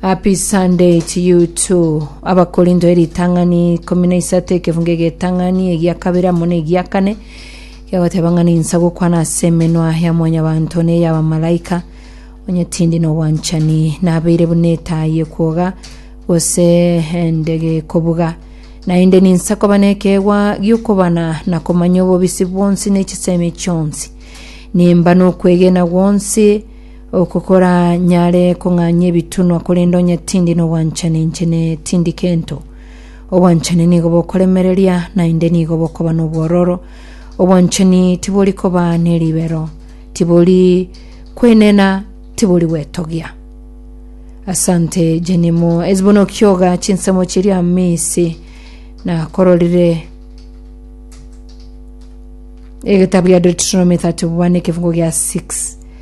Happy Sunday to you too. Abakorindo eritang'ani ikomi na isato ekefunga egetang'ani egia kabere amo na egia kane giagoteba ng'a ninsa gokwana ase emenwa ya mwanyabanto na ey'abamalaika onye tindi n'obwanchani nabeire buna etaai ekwoga gose ende gekobuga naende ninsa koba nekeegwa gi'okobana na komanya obobisi bwonsi ne chisemi chionsi nimba n'okwegena gwonsi Oko koranyare kong'anyia ebitunwa, korende onye tindi nobwanchani inche ne tindi kento. Obwanchani nigo bokoremereria, naende nigo bokoba nobwororo. Obwanchani tibori koba neribero, tibori kwenena, tibori gwetogia. Asante Jenimo Ezibona okioga chinsemo chiria misi nakororire egetabu gia Deuteronomy 31 ekefungo gia 6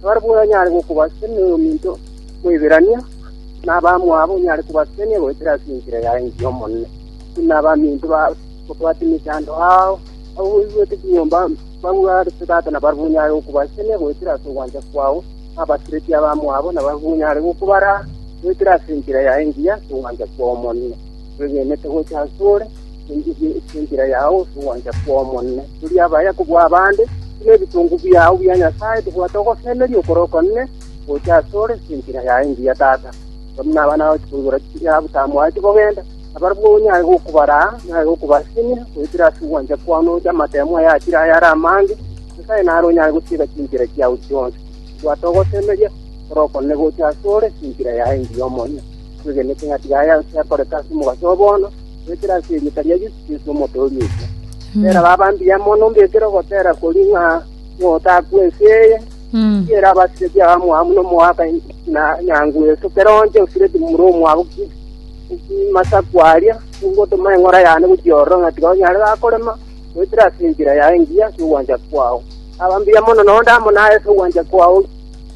Nabarabwo onyare gokobasisania noyominto Moiberania, na abamwabo onyare kobasisania goetera ase enchera ya ense y'Omonene, buna abaminto bagobwate emechando ao, abwo boigwete ching'ombe bagwo are tata nabarabwo onyare gokobasisania goetera ase ogwancha kwao, na abasireti abamwabo nabarabwo onyare gokobaraa goetera ase enchera yaye engiya ase ogwancha kw'Omonene, bwegenete gocha asore. Enchili enchera yao nogwancha kw'Omonene. Turi abaya kobua abande, buna ebitongo biao bia Nyasae tobwate ogosemeria okore okonene gocha asore ase enchera yaye engiya Tata. Aba buna abana bao tikoigora chitiiri yabo tamwati kogenda, nabarabwo onyare gokobaraa, onyare gokobasinyia, goetera ase ogwancha kwao noche amatemo aya achire aye are amange, Nyasae nare onyare gotiga chinchera chiao chionsi. Tobwate ogosemeria okore okonene gocha asore ase enchera yaye engiya Omonene. Twegenete ng'a tiga aya onsi akoreke ase omogaso oo bono, goetera ase erieta ria Yeso Kristo, Omotoori oito. Tera baba mbuya mono ombekere ogotera koria ng'a notakwe ense eye, tiera abasibeti abamwabo buna omoaka na nyangu eso, kera onte osireti momura omwabo masaku aria, ogotoma eng'ora yane gochia ororo ng'a tiga onyare gakorema, goetera ase enchera yaye engiya ase ogwancha kwao. Baba mbuya mono, nonde amo naye ase ogwancha kwao.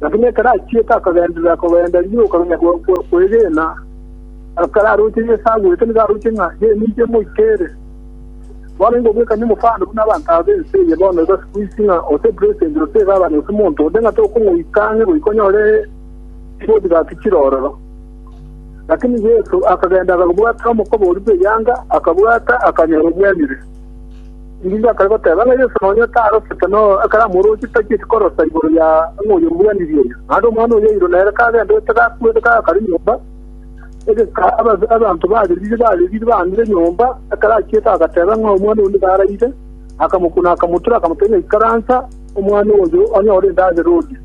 Lakini ekero achiete akagenderera kogenda rigiya okamenya kwegena. Ekero aroche Yeso agwete nigo aroche ng'a yeminto emoite ere. Bono ingo bwekanye omofando buna abanto aba b'ense eye bono igo sikuisi ng'a ose president, ose egavana, ose monto onde ng'a tokomoita ang'e goika onyore riboti gaki chire ororo. Lakini Yeso akagenda akabwatera omokoboori bw'eyanga, akabwata, akanyora obwenyire. Erinde akare goteba, ng'a Yeso nonya tarosete ekaramu orooche tacheti korosa igoro ya ng'a oyomuganirie oria. Naende omwana oria oirwe nere kagenderete gakwete kagakare nyomba, egeka abanto baririire baririire baangire nyomba, ekero achiete agateba ng'a omwana oyo nigo araire, akamokuna akamotura, akamotebia ng'a Ikaransa, omwana oyo, onyore endagera orie.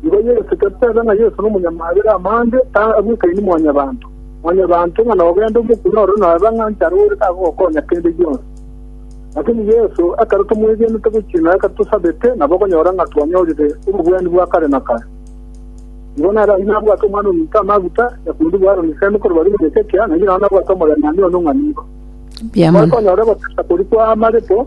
Nigo Yesu totebe ng'a Yesu nomonyamabera amande, tagwekaini mwanyabanto. Mwanyabanto ng'a nogende omokune ore noebe ng'a nchare ore tagogokonya kende gionsi. Lakini Yesu ekero tomwegenete gochia nonya ekero tosabete, nabo okonyora ng'a twanyorire obobwani bwa kare na kare. Nigo nere ayio nabwate Omwana ominto amaguta ya koirigwa Aroni Isemi korwa barimo Hezekia, na inche nao nabwate omorembe one ong'anigo. Mbuya mono. Tokonyora ogotesa koria kwa amarepo.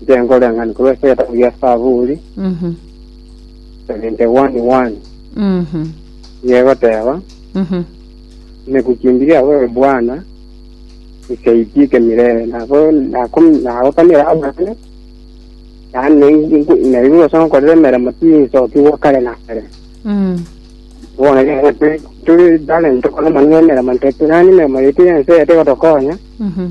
Inche nkoreng'ani korwa ase egetabu gia Saburi Mhm. 71 1 Mhm. nigo egoteba Mhm. nekuchimbi giabo ewe Bwana nikaitiike mirere nabo naku- nagokanera amang'ana yaani naigu- naigure ase ngokorera emeremo tinsokigwa kare na kare Mm. bono rero turi- turi talent tokore amang'ana emeremo ntotebia nani emeremo yaito ya ense eye tigotokonya Mhm.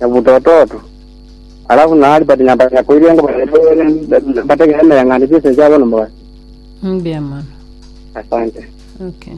nyabutototo. Alafu naari batinyabaanya koirwa engo bairwe ba- bategere emeyang'ano chi'ense chiabo nomogati. Mbuya mono. Asante. Okay.